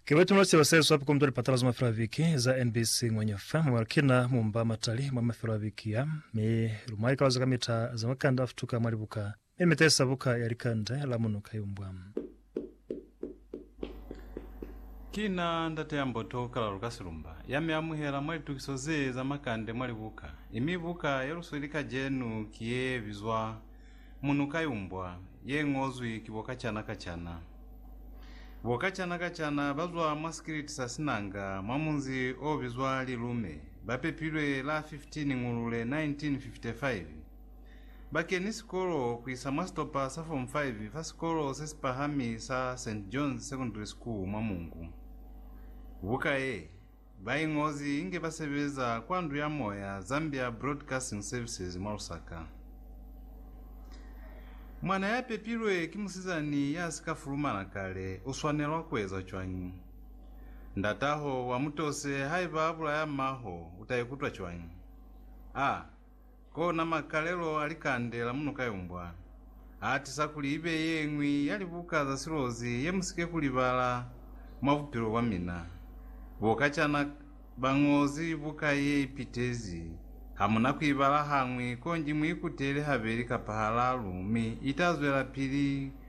Ke ba tumula seba se swapi komto lipatala za mafelo a viki za NBC Ngwenya FM mwa kina mumba matali mwa mafelo a viki ya mi lumwa likalo za kamita za makanda a futuka mwa libuka mi mitesa buka ya likande la muno kayumbwa. Kina ndate ya mboto kala lukasilumba ya mi amuhela mwa litukiso ze za makande mwa libuka, imi buka ya lusweli kajenu ki ye bizwa Munu ka yumbwa ye ñozwi ki Bokacana-kacana. Bokacana-kacana ba zwa mwa sikiliti sa Sinanga mwa munzi o bizwa Lilume, ba pepilwe la 15 Ngulule 1955. Ba keni sikolo ku isa mwa sitopa sa Form 5 fa sikolo se si pahami sa St. John's Secondary School mwa Mungu. Buka ye Baingozi inge basebeza kwa Ndu ya Moya, Zambia Broadcasting Services, mwa Lusaka. Mwana ya pepilwe ki musizani ya si ka fulumana kale u swanelwa ku eza cwañi? Ndataho wa mutose haiba a bulaya m'aho u ta ikutwa cwañi? A Kona makalelo a likande la munukayumbwa aatisa kuli ibe yeñwi ya libuka za silozi yemusike kulibala mwa bupilo bwamina. Bo kacana bañozi buka ye ipitezi, hamuna kuibala hañwi, konji muikutele habeli kapa halaalu mi itazwelapili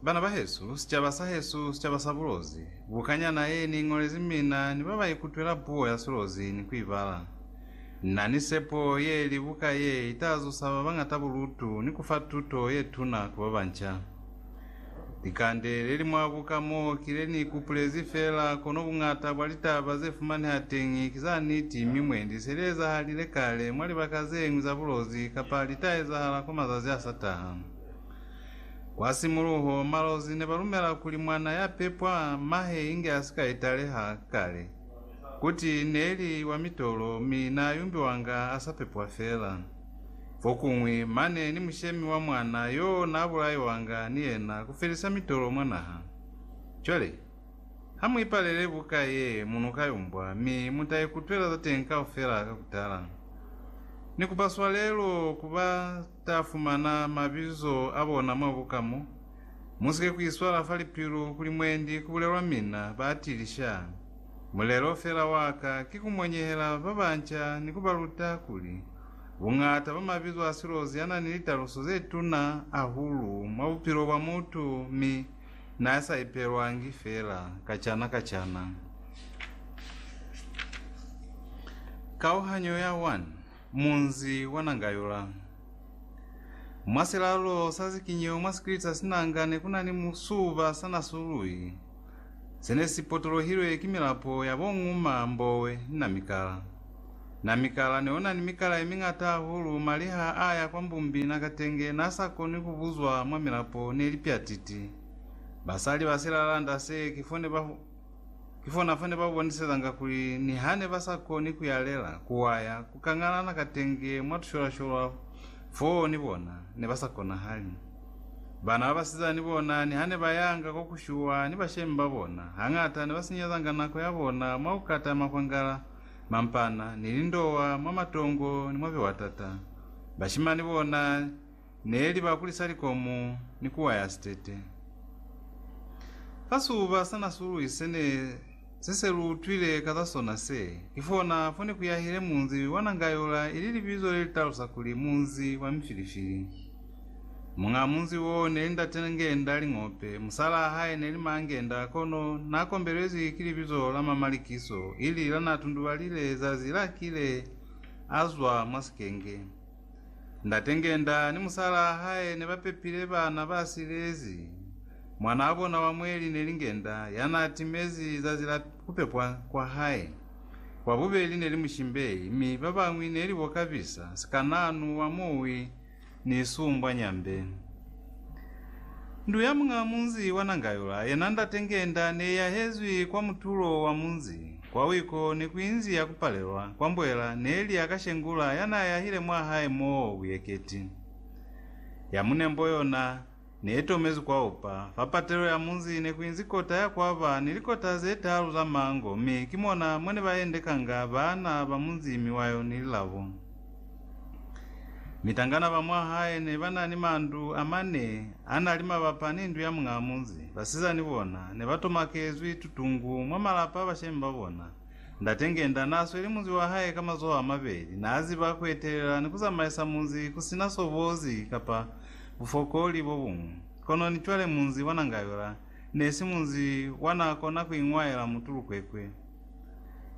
Bana bahesu, sicaba sahesu, sicaba sa bulozi, bukanyana ye ni iñolezi mina ni ba ba ikutwela puo ya silozi ni ku i bala. Na ni sepo ye li buka ye i ta zusa ba bañata bulutu ni ku fa tuto ye tuna ku ba banca. Likande le li mwa buka mo ki le ni ikupulezi fela, kono buñata bwa litaba ze fumaneha teñi ki za niti mi mwendi se li ezahalile kale mwa libaka ze ñwi za bulozi kapa li ta ezahala kwa mazazi a sa taha. Kwa simuluho, malozi ne ba lumela kuli mwana ya pepwa mahe inge a si ka italeha kale, kuti ne li wa mitolo mi n'a yumbiwanga a sa pepwa fela. Fokuñwi, mane ni mushemi wa mwana y'o n'a bulaiwanga ni yena ku felisa mitolo mwa naha. Cwale, ha mu ipalele buka ye mu n'o ka yumbwa, mi mu ta ikutwela za teñi kaufela ka ku tala. Ni kupa swalelo ku ba. Ta fumana mabizo a bona mwa buka mo. Musike kuiswala fa lipilu kuli mwendi kubulelwa mina ba atili sha. Mulelo fela waka ki kumonyehela babanca ni kubaluta kuli, buñata bwa mabizo a silozi anani litaluso zetuna ahulu mwa bupilo bwa mutu mi naasa ipelwangi fela kacana kacana. Kauhanyo ya 1. Munzi wa Nangayula. Mwa silalo sa zikinyo mwa sikiliti sa sinanga ne ku na ni musuba sa nasului se ne si potolohilwe ki milapo ya bo Nguma, Mbowe ni Namikala. Namikala ne o na ni mikala ye miñata hahulu mwa liha a ya kwa Mbumbi Nakatenge n'a sa koni ku buzwa mwa milapo ne li pyatiti. Basali ba silalanda se ki fo ne ba Ki fona fa ne ba bonisezanga kuli niha ne ba sa koni ku yalela, ku waya, ku kangalana katenge mwa tusholasholwa foo ni bona, ne ba sa konahali. Bana ba basiza ni bona niha ne ba yanga ko ku shuwa ni bashemi ba bona, hañata ne ba sinyezanga nako ya bona mwa ku kata makwangala, mampana, ni lindowa mwa matongo ni mwa biwatata. Bashimani bona. Ne li ba kulisa likomo ni ku waya sitete. Ka siuba sa nasulwi se ne si se lu utwile ka za sona se, ki fona fo ne ku yahile munzi wa Nangayola ili libizo le li talusa kuli Munzi wa Mifilifili. Muñaa munzi wo neli Ndate Ngenda Lingope, musalaa hae neli Maa Ngenda kono na kombelezwi ki libizo la Mama Likiso ili la na tundubalile zazi la kile a zwa mwa sikenge. Ndate Ngenda ni musalaa hae ne ba pepile bana ba silezi. Mwanaa bona wa mweli ne li Ngenda, ya naa timezi zazi la ku pepwa kwa hae. Wa bubeli ne li Mushimbei, mi ba bañwi ne li bo Kabisa, sikanaanu wa muwi, ni Sumbwa Nyambe. Ndu ya muñaa munzi wa Nangayula, yena Ndate Ngenda, ne i yahezwi kwa mutulo wa munzi. Kwa wiko ne ku inzia ku palelwa kwa mbwela ne li ya ka Shengula ya n'a yahile mwa hae mo buyeketi. Ya munembo yona ne i tomezwi kwa upa. Fa patelo ya munzi ne ku inzi kota ya kwa ba ni likota ze talu za mango mi ki mona mwa ne ba endekanga baana ba munzi mi wa yo ni lilabo. Mitangana ba mwa hae ne ba na ni mandu a mane a na li mabapa ni ndu ya muñaa munzi. Basizani bona ne ba tomakezwi tutungu mwa malapa a bashemi ba bona. Ndate Ngenda naa sweli munzi wa hae ka mazoho a mabeli. Naa ziba ku etelela ni ku zamaisa munzi ku si na sobozi kapa bufokoli bo buñwi. Kono ni cwale munzi wa Nangayola ne si munzi wa naa kona ku iñwaela mutulukwekwe.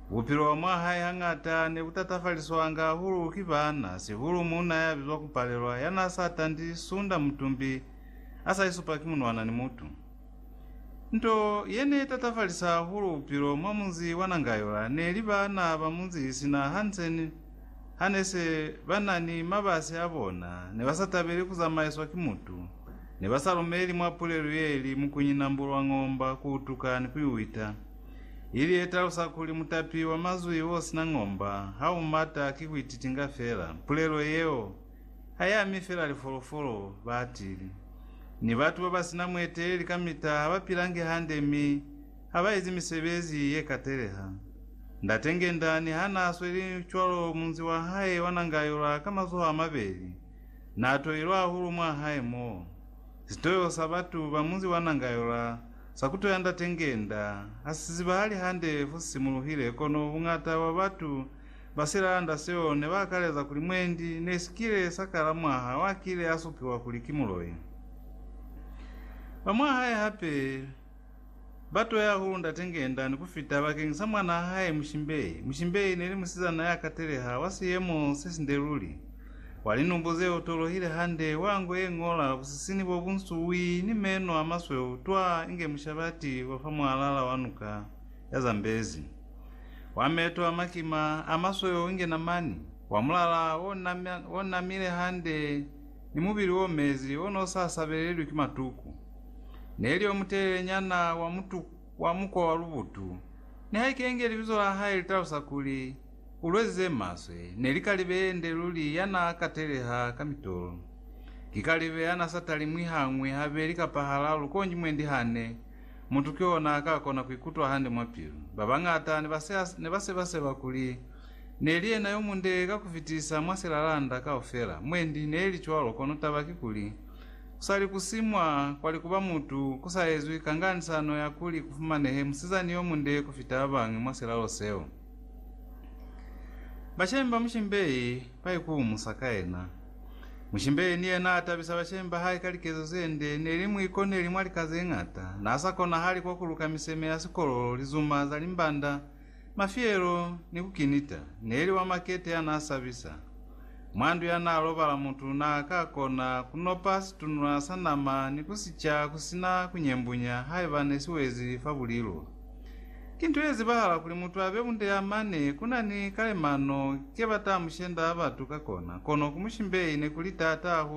Bupilo bwa mwa hae hañata ne bu tatafaliswanga hahulu ki baana, sihulu muuna ya bizwa ku Palelwa ya n'a sa tandi sunda mutumbi a sa isupa ki munwana ni mutu. Nto ye n'e tatafalisa hahulu bupilo mwa munzi wa Nangayola ne li baana ba munzi sina Hansen ha ne se ba na ni mabasi a bona, ne ba sa tabeli ku zamaiswa ki mutu, ne ba sa lumeli mwa pulelu ye li Mukunyina Mbulwang'omba ku utuka ni ku i wita. ili yetalusa kuli mutapi wa mazwi osina ng'omba ha u mata ki kuititinga fela. Pulelo yeo ha i ami fela lifolofolo, baatili, ni batu babasina mueteleli kamita ha ba pilangi hande mi ha ba ezi misebezi ye kateleha. Ndate Ngendani ha naa sweli cwalo munzi wa hae wa nanga yola ka mazoho a mabeli, naa toilwe hahulu mwa hae moo. Sitoyo sa batu ba munzi wa nanga yola Sa kuto ya ndate ngenda ha si zibahali hande fo si simuluhile, kono buñata bwa batu ba silalanda seo ne ba akaleza kuli mwendi ne si kile sa kala mwaha wa kile a supiwa kuli ki muloi. Ba mwa hae hape ba to ya hahulu ndate ngenda ni ku fita bakeng sa mwanaa hae Mushimbei. Mushimbei ne li musizana ya kateleha, wa siyemo se sinde luli. Kwa linubu ze otolohile hande, wa nko ye ñola, busisini bo bu nsuwi, ni meno a masweu, twa inge mushabati wa fa mwalala wa nuka ya zambezi, wa meto a makima, a masweu inge namani, wa mulala o namile hande, ni mubili o mezi, o n'o sa sabelelwi ki matuku. Neli o mutelele nyana, wa mutu, wa mukwa wa lubutu. Nihaike inge libizo la hae li talusa kuli, Kulwe ze maswe ne li kalibe yende luli ya n'a kateleha ka mitolo. Ki kalibe ya n'a sa talimwi hañwi, habeli kapa halalu konji mwendi hane mutu ki ona a ka kona ku ikutwa hande mwa pilu. Ba bañata ne ba seba-seba kuli ne li yena yo munde ka ku fitisa mwa silalanda kaufela. Mwendi ne li cwalo, kono taba ki kuli, ku sa li ku simwa kwa likuba mutu ku sa ezwi kanganisano ya kuli ku fumanehe musizani yo munde ku fita ba bañwi mwa silalo seo. Bashemi ba mushimbei ba ikuhumusa ka yena. Mushimbei ni yena atabisa bashemi ba hae ka likezo ze nde, neli mu ikoneli mwa lika ze ñata, na sa konahali kwa kuluka miseme ya sikolo, lizuma za limbanda, mafiyelo, ni ku kinita. Neli wa makete ya na sabisa. Mwa ndu ya na lobala mutu na ka kona ku nopa situnula sa nama ni ku si ca ku sina ku nyembunya haiba ne si wezi fa bulilo. Ki nto ye zibahala kuli mutu abe bunde ya mane ku na ni kalemano ke ba ta mu shenda batu ka kona, kono ku mushimbeyi ne ku li taata hahulu